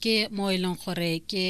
ke mo e leng gore ke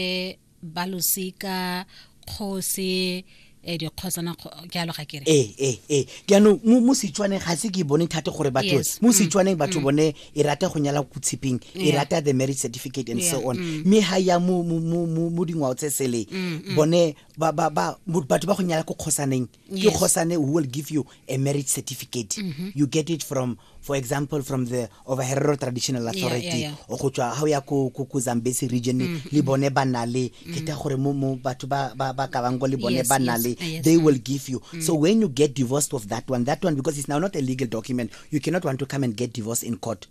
balosika kgosi e dikgosana jalo ga kere ee ee ee jaanong mo setswaneng ga se ke bone thata gore batho mo mm. setswaneng batho mm. bone e rata go nyala ko tshipeng e rata the marriage certificate and so on mm. mme ga ya mo dingwao tse sele bone batho ba go nyala ko kgosaneng Yes. ke kgosane who will give you a marriage certificate mm-hmm. you get it from for example from the overherero traditional authority yeah, yeah, yeah. o go tswa ga o ya ko ko zambesi region mm -hmm. le bone ba na le mm. ke ta gore mo mo batho ba ba ba ka bang go le bone yes, ba na le yes, yes. they will give you mm. so when you get divorced of that one that one because it's now not a legal document you cannot want to come and get divorced in court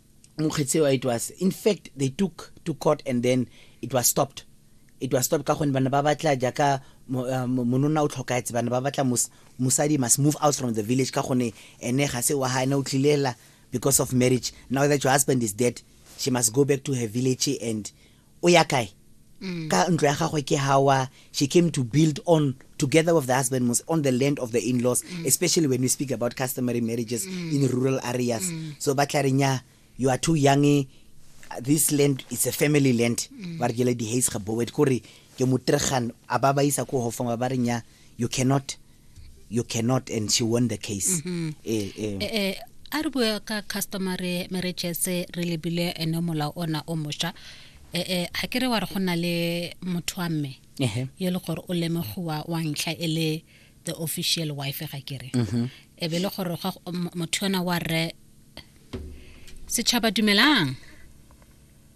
mokgetseo it was in fact they took to court and then it was stopped it was stopped ka gonne bana ba batla jaaka uh, mononna o tlhokaetse bana ba batla mosadi must move out from the village ka gonne ene ga se wa ga ene o tlilela because of marriage now that your husband is dead she must go back to her village and o ya kae mm. ka ntlo ya gagwe ke hawa she came to build on together with the husband was on the land of the in-laws mm. especially when we speak about customary marriages mm. in rural areas mm. so ba tla renya you are too young eh, this land is a family land mm. ba re jele di hays gaboet kore ke mutregan a ba ba isa ko hofong ba renya you cannot you cannot and she won the case mm-hmm. eh, eh. Eh, eh, a re bua ka customary marriages re lebile ene molao ona o mosha eh, eh, ga ke re wa re go na le motho wa mme yo le gore o lemogiwa wa ntlha e le the official wife ga ke re mm-hmm. e be le gore motho yona wa rre setšhaba dumelang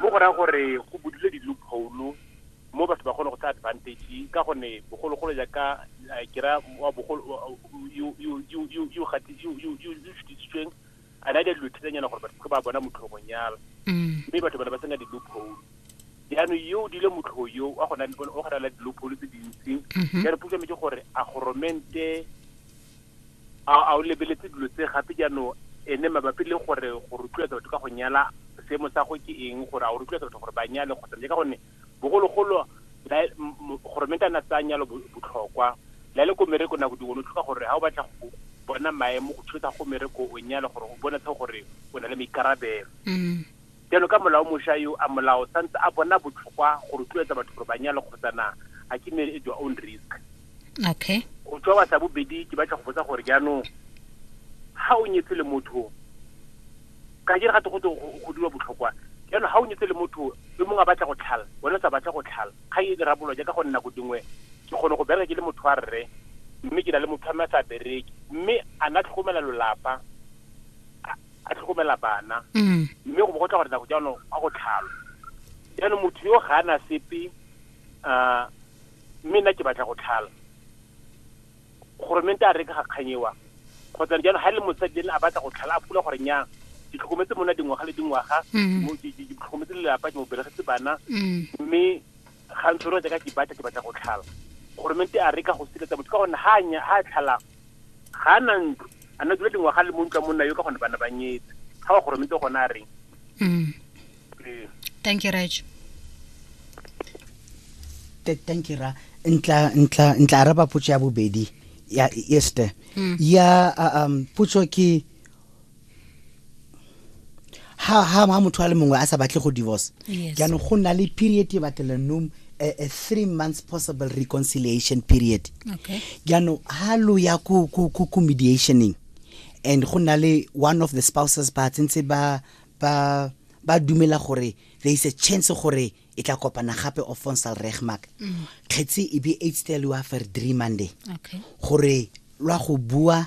mo go raya gore go budule di-loophole mo batho ba kgone go tsa advantage ka gonne bogologolo jaaka eh, ke ra wa bogolo yo yo- yo- yo- yo gati- yo- yo- yo- yo šutisitsweng a na le dilo thelenyana gore batho ba bona motlhogong yalo Mm. mme batho ba ne ba sena di-loophole jaanong yo o dile motlhogo yo wa gona o gona la di-loophole tse dintsi Mhm. ya re puso metse gore a goromente A a o lebeletse dilo tse gape jaanong ene mabapi le gore go rotloetsa batho ka go nyala seemo sa go ke eng gore a o rotloetsa batho gore ba nyale kgotsa mme ka gonne bogologolo la gore mente a na tsaya nyalo botlhokwa la le ko mereko nako dingwe lo tlhoka gore ga o batla go bona maemo go thusa go mereko o nyale gore o bone tlhogo gore o na le maikarabelo Jalo ka molao mosha yo a molao sa ntse a bona botlhokwa go rotloetsa batho gore ba nyale kgotsa na a ke marry at your own risk. Okay. Go tswa wa sa bobedi ke batla go botsa gore jaanong ha o nyetse le motho ka jere gato go tlo go dira botlhokwa jaanong ha o nyetse le motho yo mongwe a batla go tlhala wena sa batla go tlhala ga e dira bolo jaaka go nna go dingwe ke kgone go bereka ke le motho wa rre mme ke na le motho a mme a sa bereke mme a na tlhokomela lolapa a tlhokomela bana mm. mme go bo go tla gore nako jaanong a go tlhalo jaanong motho yo ga ana sepe um mme nna ke batla go tlhala goromente a reka ga kganyewa kgotsa jaanong ga e le mosadi ene a batla go tlhala a pula gore nyang ke tlhokometse mona dingwaga le dingwaga mm. ke tlhokometse lelapa ke mo belegetse bana mm. mme ga ntse re ka ke batla ke batla go tlhala goromente a re ka go siletsa motho ka gonne ga anya ga tlhalang ga na ntlo a na dula dingwaga le mo ntlo monna yo ka gone bana ba nyetse ga wa goromente gone a reng mm. ee. thank you raj thank you ra ntla ntla ntla araba potso ya bobedi ya este mm. ya um potso ke ha ha ha motho a le mongwe a sa batle go divorce Yes. jaanong go na le period e batelanong a, a three months possible reconciliation period Okay. jaanong ha lo ya ko ko ko ko mediationeng and go na le one of the spouses ba tsentse ba ba ba dumela gore there is a chance gore e tla kopana gape of fonsal regmark kgetse e be eight stel wa fer three monday Okay. gore lwa go bua